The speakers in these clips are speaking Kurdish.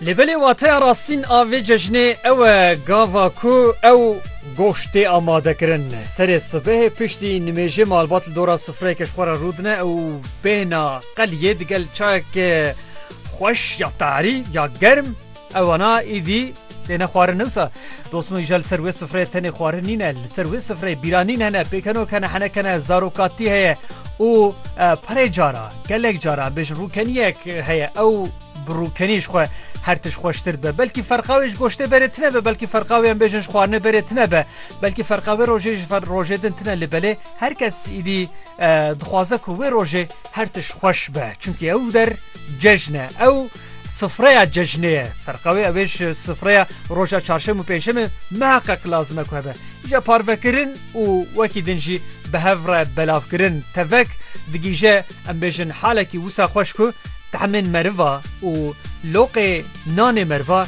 Lê belê wateya rastîn a vê cejnê ew e gava ku ew goşt tê amadekirin. Serê sibehê piştî nimêjê malbat li dora sifreyeke ji xwe re rûdine û bêhna qeliyê digel çayeke xweş ya tarî ya germ Ew wana îdî têne xwarin newsa dosin û îja li ser wê sifreyê tenê xwarin nîne li ser wê sifreyê bîranîn hene pêkenok hene heneke ne zarokatî heye û perê cara gelek cara em bêjin rûkeniyek heye ew bi rûkenî ji xwe her tişt xweştir dibe belkî ferqa wê ji goştê berê tine be belkî ferqa wê em bêjin ji xwarinê berê tine be belkî ferqa wê rojê ji fer rojê din tine li belê her kes îdî dixwaze ku wê rojê her tişt xweş be çunkî ew der cejne ew Sifreya cejnê ye. Ferqa wê ew ê ji sifreya roja çarşem û pêncşemê meha qeq lazim e ku hebe. Îja parvekirin û wekî din jî bi hev re belavkirin tevek digihîje em bêjin halekî wisa xweş ku tahmên meriva û loqê nanê meriva,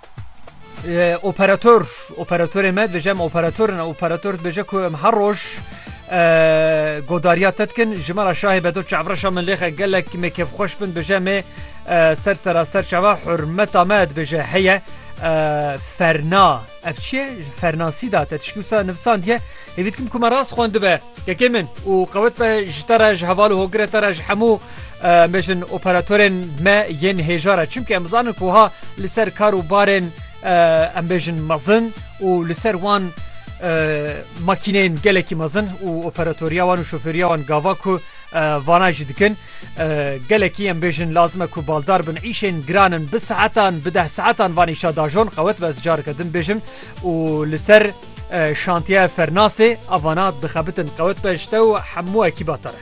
Operator operatorê me dibêje em operator ne operator dibêje ku em her roj godariya te dikin ji me re şahê bedo çavreşa min lêxe gelek me kevxweş bin dibêje me ser sera ser çava hurmeta me dibêje heye ferna ev çiye fernasî da te tişkî wisa nivsandiye hêvî dikim ku me rast xwendibe Kekê min û qewet be ji te re ji heval û hogirê te re ji hemû bêjin operatorên me yên hêjare çimkî em zanin ku ha li ser kar û barên em bêjin mezin û li ser wan makîneyên gelekî mezin û operatoriya wan û şofêriya wan gava ku vana jî dikin gelekî em bêjin lazim e ku baldar bin îşên giran in bi saetan bi deh saetan van îşa dajon qewet be ez careke din bêjim û li ser Şantiye Fernasê, Avana dixebitin qewet be ji te û hemû ekîba te re.